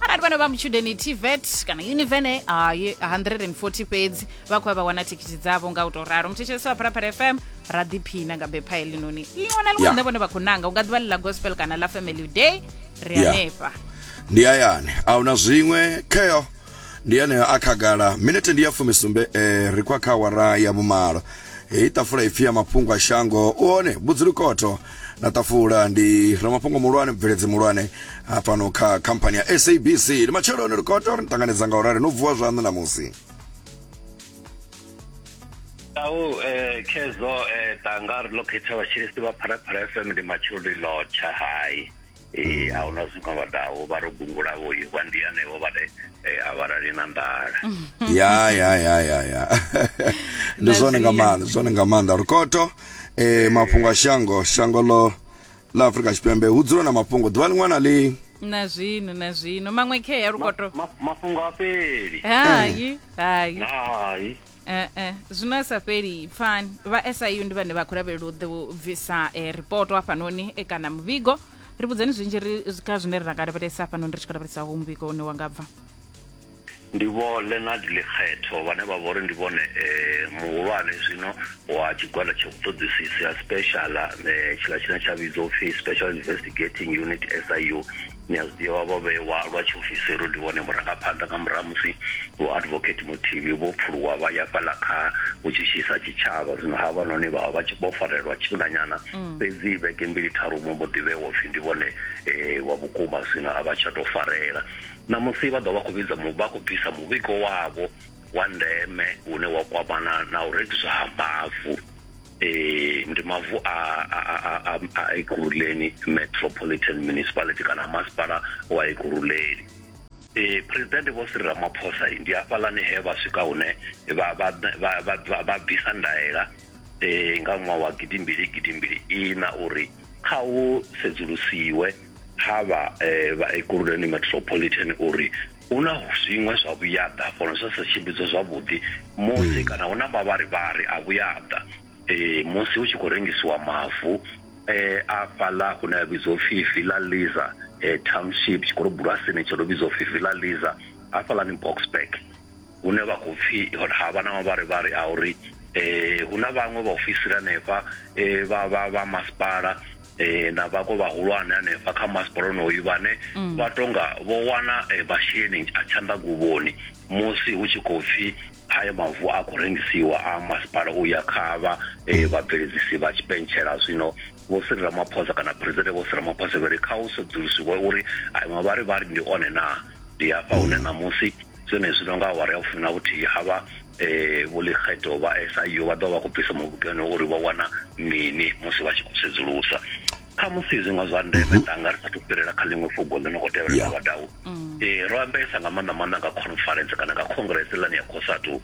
arati vana va muchudeni tvet kana univene ah, ye- 140 fhedzi vha khou ya vha wana thikhithi dzavho nga u tou ralo muthetshelesi wa pharapara fm ra ḓiphina nga bepha helinoni ḽiṅwe na ḽiṅwe Yeah. ḽine vhone vha khou nanga u nga ḓivha ḽi ḽa gospel kana ḽa family day ri Yeah. hanefha ndi hayani ahuna zwiṅwe kheo ndi yeneyo a khagala minete ndi ya fumisumbe eh, ri khou ya kha awara ya vhumalo heyi ṱafula ipfi ya mafhungo a shango u hone vhudzulukotho na ṱafula ndi ramafhungo muhulwane mubveledzi muhulwane hafhano kha khamphani ya sabc ndi matsheloni ri khou tea uri ni ṱanganedza nga u rali no vuwa zwaṋu ṋamusi au eh, khezo eh, tanga ri ḽo khetha vhatshilisi vha pharapara fm ndi matsheloni lotsha hai ee a huna zwino vha daho vha ro gungula vho ye vha ndi anevho vha re eh, a vhalali na nḓala ya ya ya ya ya ndi zwone nga maanḓa ndi zwone nga maanḓa rukoto eh mafhungo a shango shango lo la Afrika Tshipembe hu dzula na mafhungo ḓuvha ḽiṅwe na ḽiṅwe na zwino na zwino maṅwe khea lukoto Ma- mafhungo a fheli hai hai hai Eh, eh, zwino a sa fheli pfani vha siu ndi vhane vha khou lavhelela u ḓe u bvisa eh, ripoto hafhanoni eh, kana muvhigo ri vhudzeni zwinzhi ri kha zwine ra nga lavhelesa hafhanoni ri tshi khou lavhelesa ho muvhigo une wa nga bva ndi vho leonard lekgetho vhane vha vhori ndi vhone eh, muhulwane zwino wa tshigwada tsha vhuṱoḓisisi ha special eh, tshiḽa tshine tsha vhidzwa upfi special investigating unit siu Ni a zwi ḓivha, vho vhewa lwa tshiofisiri uri ndi vhone vhurangaphanḓa nga murahu ha musi Vho Advocate Mothibi vho pfuluwa vha ya fhaḽa kha vhutshitshisi ha tshitshavha. Zwino havhanoni vha vha vha tshi vho farelwa tshifhinganyana, fhedzi vhege mbili tharu vho mbo ḓi vhewa u pfi ndi vhone wa vhukuma, zwino a vha tsha tou farela. Ṋamusi vha ḓo vha vha khou vhidza mu, vha khou bvisa muvhigo wavho wa ndeme une wa kwamana na u rengiswa ha mavu. eh ndi mavu a a a Ekurhuleni Metropolitan Municipality kana masipala wa Ekurhuleni eh president vho Cyril Ramaphosa ndi hafhaḽani he vha swika hune vha vha vha bvisa ndaela eh nga ṅwaha wa gidimbili gidimbili ina uri kha u sedzulusiwe ha vha eh, vha Ekurhuleni Metropolitan uri hu na zwiṅwe zwa vhuyaḓa fhono zwa sa tshimbidzwa zwavhuḓi musi hmm. kana hu na mavharivhari a vhuyaḓa um musi hu tshi khou rengisiwa mavu um a fhaḽa hune a vhidzwa upfhi villa liza um township tshikolobulwasini tsho no vhidzwa upfhi villa liza hafhaḽani boxburg hune vha khou pfi ha vha na mavharivhari a uri um hu na vhaṅwe vhaofisiri hanefha um vha masipala eh na vhako vhahulwane hanefha kha masipala onoyu vhane mm. vha tonga vho wana eh, masheleni a tshanḓaguvhoni musi hu tshi khou pfhi haya mavu a khou rengisiwa a masipala u ya kha vha eh, vhabveledzisi vha tshipentshela zwino vho siri ramaphosa kana presidente vho siri ramaphosa vhari kha u sedzulusiwe uri ayo mavharivhari ndi one na ndi hafha hune ṋamusi zwenezwi no nga awara ya vhufumi na vhuthihi a vha eh, vho lekgeto vha SIU vha ḓo vha khou bvisa mubugeno uri vho wana mini musi vha tshi khou sedzulusa kha musi zwiṅwe zwa ndeme tanga ri sathu fhirela kha ḽiṅwe fugo ḽi no khou tevhela Yeah. vhadau eh, ro ambesa nga maanḓa maanḓa nga conference kana nga congress lani ya cosatu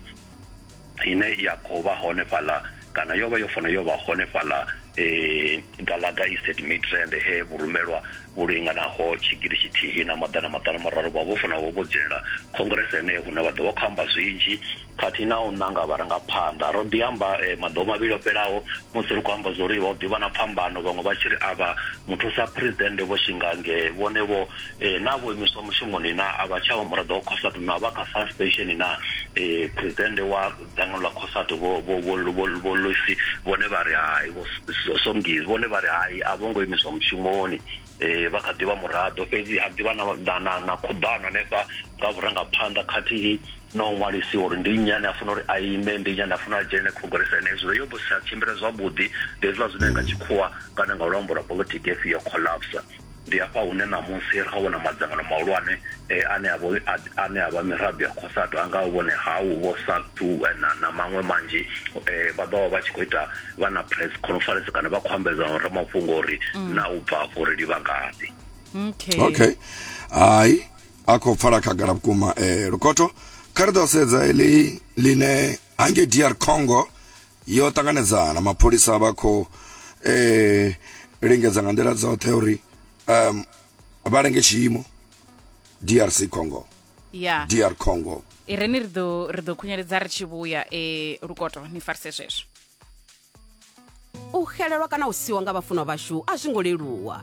ine ya khou vha hone fhaḽa kana yo vha yo fanela yo vha hone fhaḽa um galaga isted midrand he vhurumelwa vhu linganaho tshigidi tshithihi na maḓana maṱanu mararu vha vho fanela vho dzhenela khongrese heneyo hune vha ḓo vha khou amba zwinzhi khathihi na u ṋanga vharangaphanḓa ro ḓi amba eh, maḓuvha mavhili o fhelaho musi ri khou amba zwo ri vha ḓi vha na phambano vhaṅwe vha tshi ri a vha muthusa presidennde vho shingange vhone vho Ee, naa vho imiswa mushumoni naa a vha tsha vha muraḓo wa Cosatu naa vha kha fast pension naa ee, phuresidennde wa dzangano ḽa Cosatu vho vho vho vho vho Loisi vhone vha ri hai vho Somgies vhone vha ri hai a vho ngo imiswa mushumoni ee, vha kha ḓi vha muraḓo fhedzi ha ḓi vha na na na, na khuḓano hanefha nga vhurangaphanḓa khathihi na u ṅwalisiwa uri ndi nnyi ane a fanela uri a ime ndi nnyi ane a fanela a dzhenele khongolese ene hezwo yo vha zwi sa tshimbile zwavhuḓi ndi hezwiḽa zwine nga tshikhuwa kana nga luambo lwa politiki hepfi yo collapse ndi hafha hune ṋamusi ra vhona madzangano mahulwane eh, ane a vho- a- ane a vha miraḓo ya khosato a ngaho vhone hau vho satu eh, na na maṅwe manzhi eh, vha ḓovha vha tshi khou ita vha na press conference kana vha khou ambedza na ramafhungo uri na u bva afho ri livha ngafhi okay okay hai a khou pfala khagala vhukuma eh, lukoto kha ri ḓo sedza eḽi ḽine hangei dr congo Yo ṱanganedzana na mapholisa vha kho e lingedza nga nḓila dzoṱhe uri um vha lenge tshiimo drc congo ya dr congo i re ni ri ḓo ri ḓo khunyeledza ri tshi vhuya e lukoto ni farise zwezwo u xelelwa kana u siwa nga vhafunwa vhashu a zwi ngo leluwa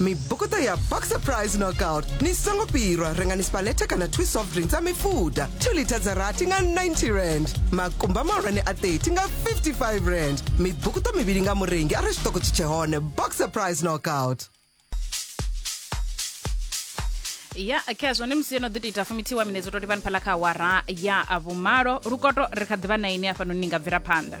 mibukuta ya boxer price knockout ni songo pirwa rengani spaleta kana 2 soft drinks a mifuda 2 lita dza rathi nga 90 rand makumba mahulwane a 30 nga 55 rand mibukuta mivhili nga murengi a re xitoko tshi tshe hone boxer price knockout ya khezwo ni musi yo no ḓi tou ita fumitiwa minedzo to livhani phala kha awara ya vhumalo lukoto ri kha ḓivha na ine afhanoni ni nga bvela phanḓa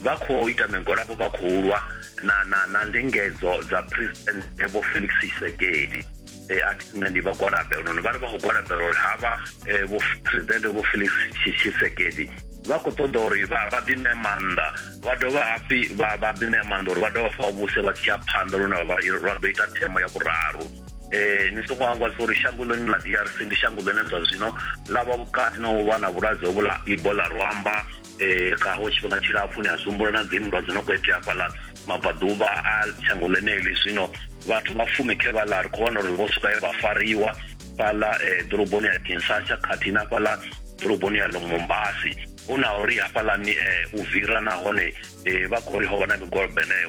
Vha khou ita migwalabo vha khou lwa na na na ndingedzo dza president Vho Felix Tshisekedi. Eh, a thi nṋe ndi vha gwalabela noni vha ri vha khou gwalabela uri havha eh, vho president Vho Felix Tshi- Tshisekedi vha khou ṱoḓa uri vha vha ḓi ṋee maanḓa vha dovha hafhi vha vha ḓi ṋea maanḓa uri vha dovha fa vhuse vha tshi ya phanḓa lune vha vha ḓo ita themo ya vhuraru eh ni songo hangwasa uri shango ḽone ḽa DRC ndi shango ḽine zwa zwino ḽa vha vhukati na u vha na vhulwadze hovhu ḽa Ebola rwamba eh gaho tshifhinga tshilapfu ni a zwihumbula na dzinndwa dzi no khou itea fhaḽa mabvaḓuvha a shango ḽeneḽi zwino vhathu vha fumi khe vhaḽa ri khou wana uri vho swika vha fariwa fhaḽa eh, ḓoroboni ya kinsasha khathihi na fhaḽa ḓoroboni ya lomombasi hu na uri hafhaḽani eh, u vira nahone eh, vha khou ri ho vha na migwalabo eneyo